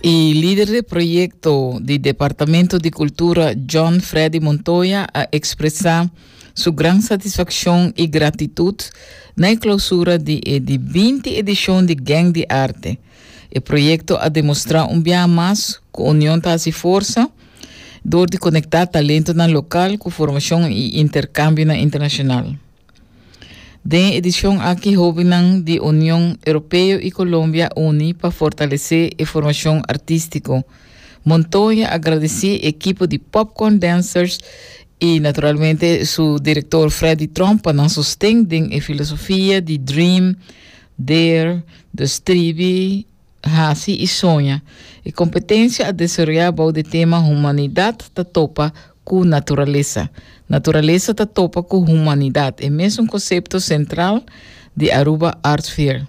Y lider de proyecto di Departamento di Cultura John Freddy Montoya a expresa su gran satisfaccion y gratitud na e clausura di e di binti edicion di Gang di Arte. E proyecto a demostra un biaha mas cu union ta haci forsa door di conecta talentonan local cu formacion y intercambionan internacional. Den e edicion aki hobinan di Union Europeo y Colombia uni pa fortalece e formacion artistico. Montoya a gradeci e ekipo di Popcorn Dancers y naturalmente su director Freddy Tromp pa nan sosten den e filosofia di Dream, Dare, Dustribi, hasi i soña. E kompetensia a desaroyá bou di tema Humanidat ta topa ku naturalesa. Naturalesa ta topa ku humanidat, e mesun kosepto sentral di Aruba Art Fair.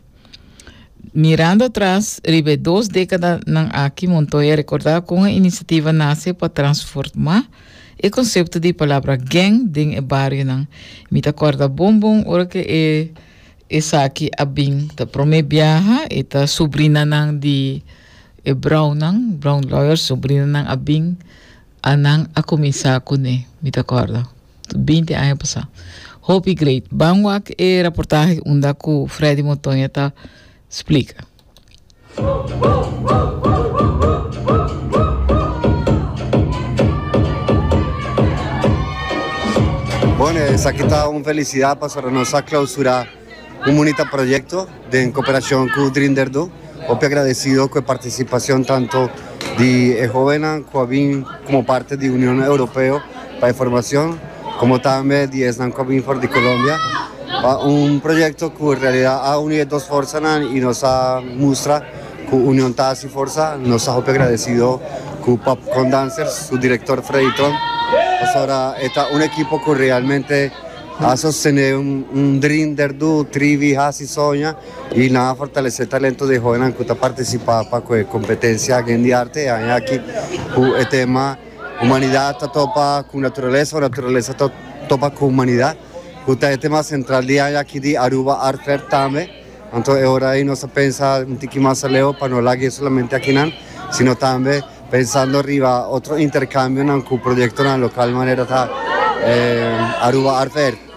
Mirando atras, riba e dos dékadanan aki, Montoya rekordá kon e inisiativa nase pa transformá e konsepto di palabra geng den e barionan. Mi ta kòrda bon bon ora ku e Esaki a bin ta prome biaha y ta subrinanan di e Brownnan, Brown Lawyers, subrinanan a bin a nan a cuminsa cu ne, mi ta corda, binti aña pasa. Hopi great. Ban wak e raportahe unda cu Freddy Montoña ta splica. Bueno, esaki ta un felicidad pasobra nos a clausura un munita proyecto den cooperacion cu Dream der do. Hopi agradecido cu e participacion tanto di e hobennan cu a bin como parte di Union Europeo pa e formacion. Komo tambe di esnan ku a bini for di Colombia pa un proyekto ku en realidat a uni e dos forsanan i nos a mustra ku union ta hasi forsa, nos ta hopi agradesido ku Popcorn Dancers su direktor Freddy Tron pasobra e ta un ekipo ku realmente a sostené un dream der do, trivi, hasi, soña i nan a fortalesé talento di e hoenan ku ta partisipá pa ku e kompetensia Gen di Arte e aña aki ku e tema. Humanidat ta topa ku naturalesa o naturalesa ta topa ku humanidat, ku ta e tema sentral di aña aki di Aruba Art Fair tambe. Anto e ora ei nos a pensa un tiki mas aleu pa no lag'é solamente akinan, sino tambe pensando riba otro interkambionan ku proyektonan lokal manera ta Aruba Art Fair.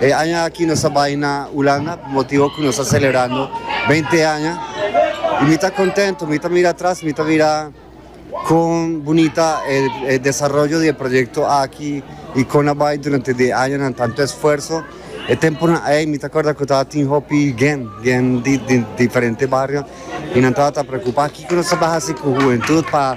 E aña aki nos a bai na Hulanda pa motibo ku nos a selebrando beinti aña i mi ta kontento. Mi ta mira atras, mi ta mira kon bunita e desaroyo di e proyekto aki i kon a bai durante di e añanan, tantu esfuerso. E tempunan ei mi ta akorda ku tabatin hopi gen, gen di diferente bario i nan tabata preokupá kiko nos tabata hasi ku hubentud pa.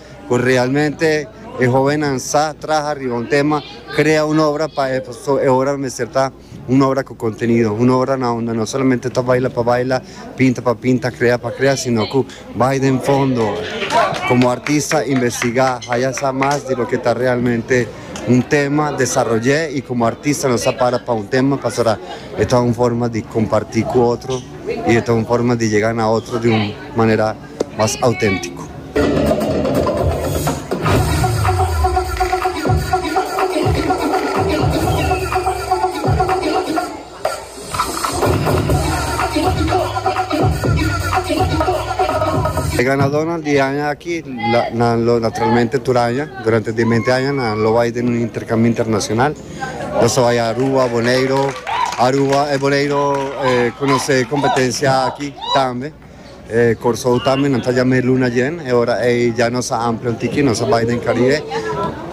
cu realmente e hobennan sa traha riba un tema, crea un obra pa e, pasobra e obra lo mester ta un obra cu contenido, un obra na unda no solamente ta baila pa baila, pinta pa pinta, crea pa crea, sino cu bay den fondo, como artista investiga, haya sa mas di loke ta realmente un tema, desaroye y como artista nos a para pa un tema pasobra e ta un forma di comparti cu otro y e ta un forma di yega na otro di un manera. mas auténtiko. E ganadónan di e aña aki nan lo naturalmente tur aña durante di e mente aña nan lo bai den un interkambio internashonal. Nos a bai Aruba, Boneiru, Aruba, Boneiru konosé kompetensia aki tambe. E Kòrsou tambe nan ta yam'é luna yen, e ora ei ya nos a amplia un tiki, nos a bai den Karibe.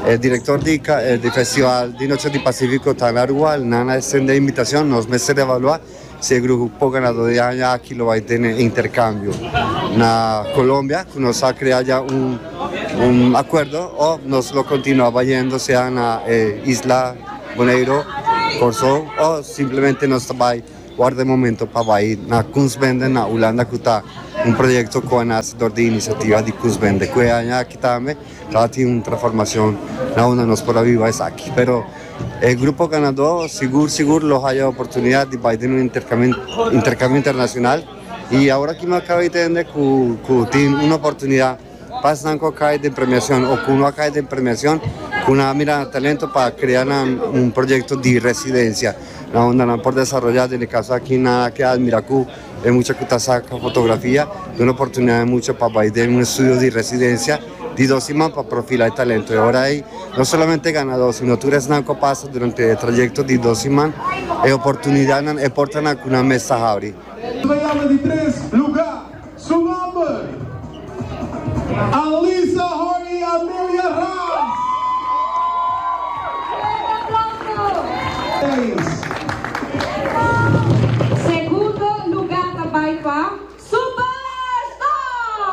E direktor di di festival di Noche di Pasífiko ta na rua, nan a estendé invitashon, nos mester revaluá si e grupo ganadó di aña aki lo bai tene interkambio na Kolombia, ku nos a krea ya un akuerdo, òf nos lo kontinuá bayendo sea na e isla Boneiro, Kòrsou, o simplemente nos ta bai. Worda e momento pa bai na Kunstbende na Hulanda ku ta un proyekto ku a nase dor di inisiativa di Kunstbende ku e aña aki tambe lo a tin un transformashon na unda nos por a biba esaki. Pero e grupo ganadó sigur sigur lo haya oportunidat di bai den un interkambio internashonal i awor aki mi a kaba di tende ku tin un oportunidat. Pas nan cu a cay den premiacion o cu no a cay den premiacion cu nan a mira nan talento pa crea nan un proyecto di residencia na unda nan por desaroya. Den e caso aki nan a ke admira cu e mucha cu ta saca fotografia duna oportunidad e mucha pa bay den un estudio di residencia di dos siman pa profila e talento. E ora ey no solamente e ganador sino tur esnan cu a pasa durante e trayecto di dos siman e oportunidadnan, e portanan cu nan mes ta habri. Su bayanda di tres lugar Su nomber, Alisa Horny Amelia Raas. Segundo luga ta bai pa Super Stars.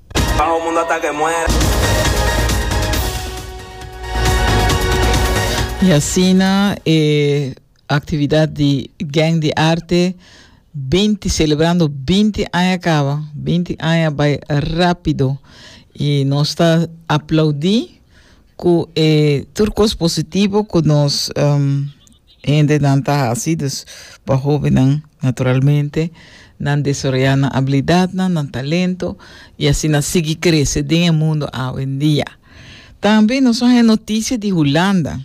I asina e aktividat di Gèng di Arte binti selebrando binti aña kaba. Binti aña bai rápido i nos ta aplaudí Cu e tur cos positivo cu nos hendenan ta haci, dus pa hobennan, naturalmente, nan desaroya nan abilidadnan, nan talento y asina sigui crece den e mundo awendia. Tambe nos a haña noticia di Hulanda.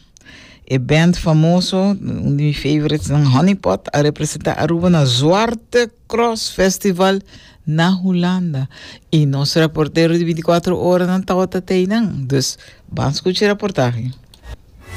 E band famoso, un di mi favorites nan, Honeypot, a representa Aruba na Zwarte Cross Festival na Hulanda y nos reportero di binticuatro oranan tawata t'ey nan, dus ban scuchi reportahe.